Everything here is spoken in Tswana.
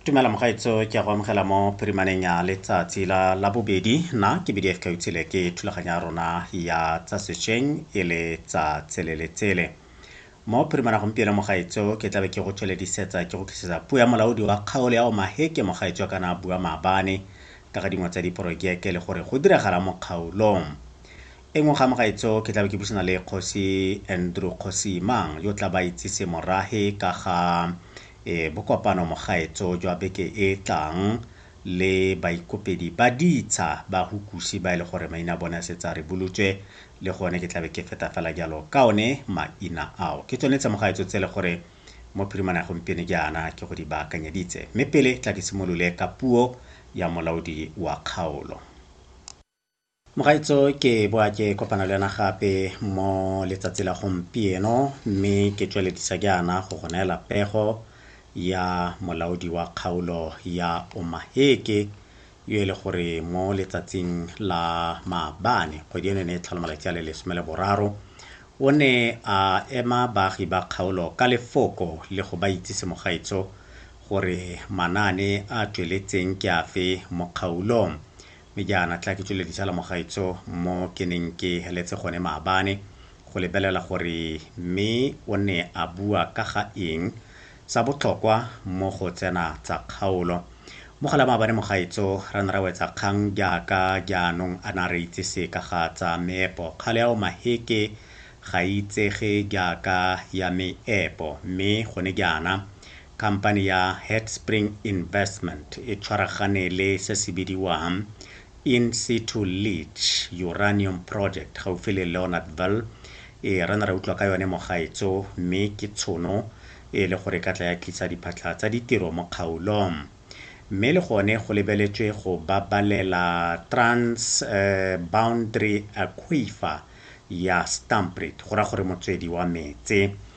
tumela mogaetso ke a go amogela mo phirimaneng ya letsatsi la la bobedi na ke bdf ka utshile ke thulaganyo ya rona ya tsa sešweng e le tsa tsele le tsele mo phirimana gompieno mogaetso ke tlabe ke go tsweledisetsa ke go tlisetsa puo ya molaodi wa kgaolo ya omaheke mogaetso wa kana bua maabane ka ga dingwe tsa diporojeke le gore go diragala mo kgaolong E nngwe ga mogaetso ke tlabe ke buisana le Kgosi Andrew Kgosi Mang yo tla ba itsise morahe ka ga e, bokopano mogaetso jwa beke e tlang le baikopedi ba ditsha ba hukusi ba e le gore maina a bone a setse a rebolotswe le gone ke tlabe ke feta fela jalo ka one maina ao ke tsone tse mogaetso tse le gore mo phirimana ya gompieno jaana ke go di baakanyeditse mme pele tla ke simolole ka puo ya molaodi wa kgaolo Mogaitso ke boa ke kopana le wena gape mo letsatsi la gompieno mme ke tsweledisa jaana go go neela pego ya molaodi wa kgaolo ya Omaheke yo e le gore mo letsatsing la maabane kgwedi eno e ne e tlhola malatsi a le lesome le boraro o ne a ema baagi ba kgaolo ka lefoko le go ba itsise mogaitso gore manaane a tsweletseng ke afe mo kgaolong Mme jaana tla ke tswele ditsala mogaetso mo ke neng ke heletse gone maabane go lebelela gore mme o ne a bua ka ga eng sa botlhokwa mo go tsena tsa kgaolo. Mogala maabane mogaetso ra ne ra wetsa kgang jaaka jaanong a na re itse se ka ga tsa meepo. Kgale ao maheke ga itsege jaaka ya meepo mme gone jaana Khamphani ya Headspring Investment e tshwaragane le se se bidiwang In Situ Leach Uranium Project gaufi le Leonardville. Ee, re ne ra utlwa ka yone mogaetso, mme ke tshono e e le gore e ka tla ya tlisa diphatlha tsa ditiro mo kgaolong. Mme le gone go lebeletswe go babalela Trans Boundary Aquifer ya Stampriet, go raya gore motswedi wa metse.